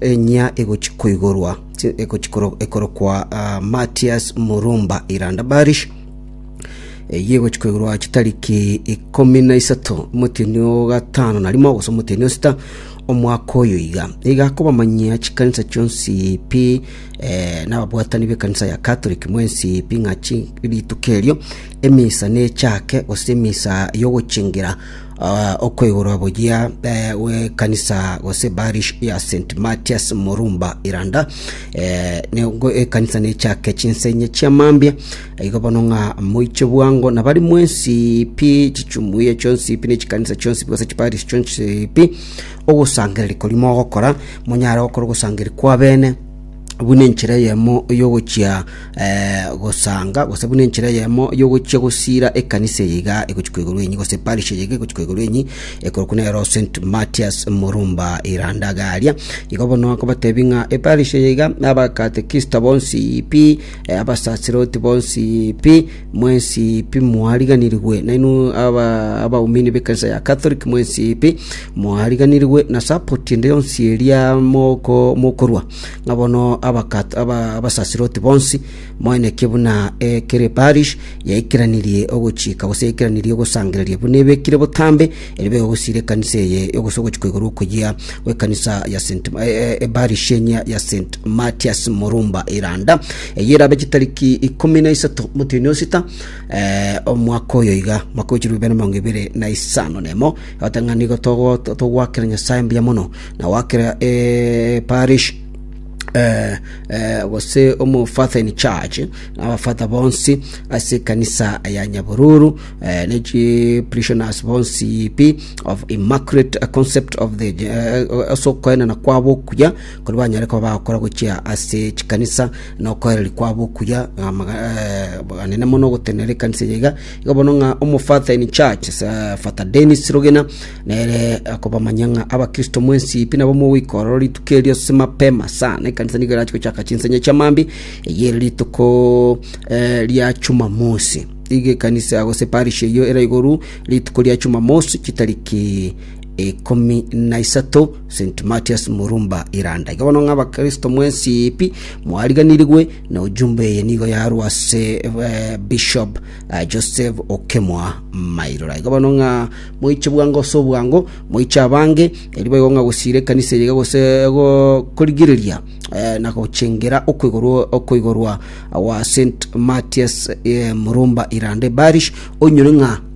Enyia egochia koigorwa ekorokwa Matias Murumba Iranda Barish, eyio egochia koigorwa ase chitariki ikomi na isato omotienyi o gatano na rimo gose omotienyi o sita omwaka oyo iga. Nigo akobamanyia chikanisa chionsi pi nababwatani b'ekanisa ya Catholic mwensi pi ng'a rituko erio emisa nechake gose emisa y'ogochingera Ah, okoigorwa boyia eh, w'ekanisa gose parish ya st matias morumba iranda eh, nengo ekanisa nechake chinsenye chiamambia igo bono ng'a moiche bwango nabari mwensi pi chichumuye chionsi pi nechikanisa chionsi pi gose chiparish chionsi pi ogosangereria kori mogokora monyare gokora ogosangereria kwa bene buna enchera eyemo y'ogochia gosanga, gose buna enchera eyemo y'ogochia gosiira ekanisa eye iga egochia koigorwa enyi, gose parish eye iga egochia koigorwa enyi, ekorokwa nero St. Matias Murumba Irandagaria. Igo bono akobatebia ng'a eparish eye iga, abakatekista bonsi pi, abasasiroti bonsi pi, Mwensi pi mwariganirigwe, nainwe abaumini b'ekanisa ya Catholic, mwensi pi mwariganirigwe na support ende yonsi eria moko mokorwa, ng'a bono abakato aba abasasiroti bonsi moeneke buna ekere parish yaikeranirie ogochika gose yaikeranirie ogosangereria buna ebekire botambe Erio begosiira ekanisa eye yogosa ogochika igoro okoyia gw'ekanisa ya St. ebarishenia ya St. Matias Morumba Iranda, eye erabe chitariki ikomi na isato motienyi osita eh, omwaka oyo iga mwaka oichirwe bibere mirongo ibere na isano nemo otang'ani igo togo- togwakera nyasaye mbuya mono na gwakera eh, parish eh, eh, gose omo father in charge abafata bonsi ase ekanisa ya nyabururu ne chiparishioners bonsi pi of Immaculate Concept of the ase okoenena kwabo okuya kori banyare koba bagokora gochia ase chikanisa na okoereri kwabo okuya amaga- eh, anene mono ogotenenera ekanisa eye iga igo bono ng'a omofather in church sa- Father Dennis Rogena nere akobamanyia ng'a abakristo mwensi pi nabo mogoika ororo rituko erio ase mapema sana ekanisa nigo erache gochaka chinsenya chiamambia eye ere rituko eh, ria Jumamosi. Egekanisa gose parish eyio era igoro rituko ria Jumamosi chitariki ikomi na isato St Matias Murumba Iranda. Iga bono ng'a abakristo mwensi pi mwariganirigwe na ojumbe eye nigo yarwa ase eh, Bishop eh, Joseph Okemwa Mairora. Iga bono ng'a moiche bwango ase obwango moiche abange eri baigo ng'a gosiira ekanisa eye iga gose go- korigereria eh, na gochengera okoigorwa okoigorwa wa St Matthias eh, Murumba Irande Barish onyore ng'a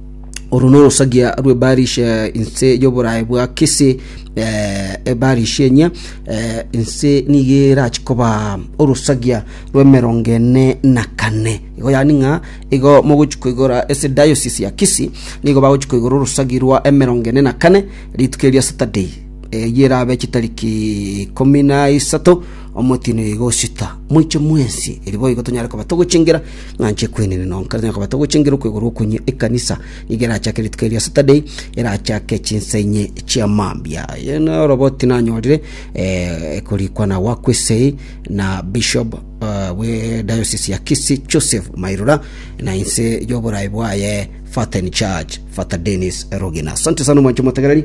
oro norosagia rwe Barish eh, inse y'oborae bwa Kisi eh, ebarish enye eh, inse nigo erachi koba orosagia rw'emerongo ene na kane igo yani ng'a igo mogochi koigora ese diocese ya Kisi nigo bagochi koigora orosagi rwa emerongo ene na kane rituko eria Saturday Eyio erabe chitariki ikomi na isato omotino oyo iga osita moiche mwensi eri boigo tonyare koba togochengira ng'anche ekwenene nonka tonyare koba togochengira okwegorwa okonye ekanisa nigo erachake rituko eria saturday erachake chinsa inye chia mambia Eye na oroboti nanyorire eh, ekorikwa na wakwesei na bishop eh, bwe diocese ya kisi joseph mairora na inse y'oborai bwaye faten church fata denis rogina asante sana omwanche motegereri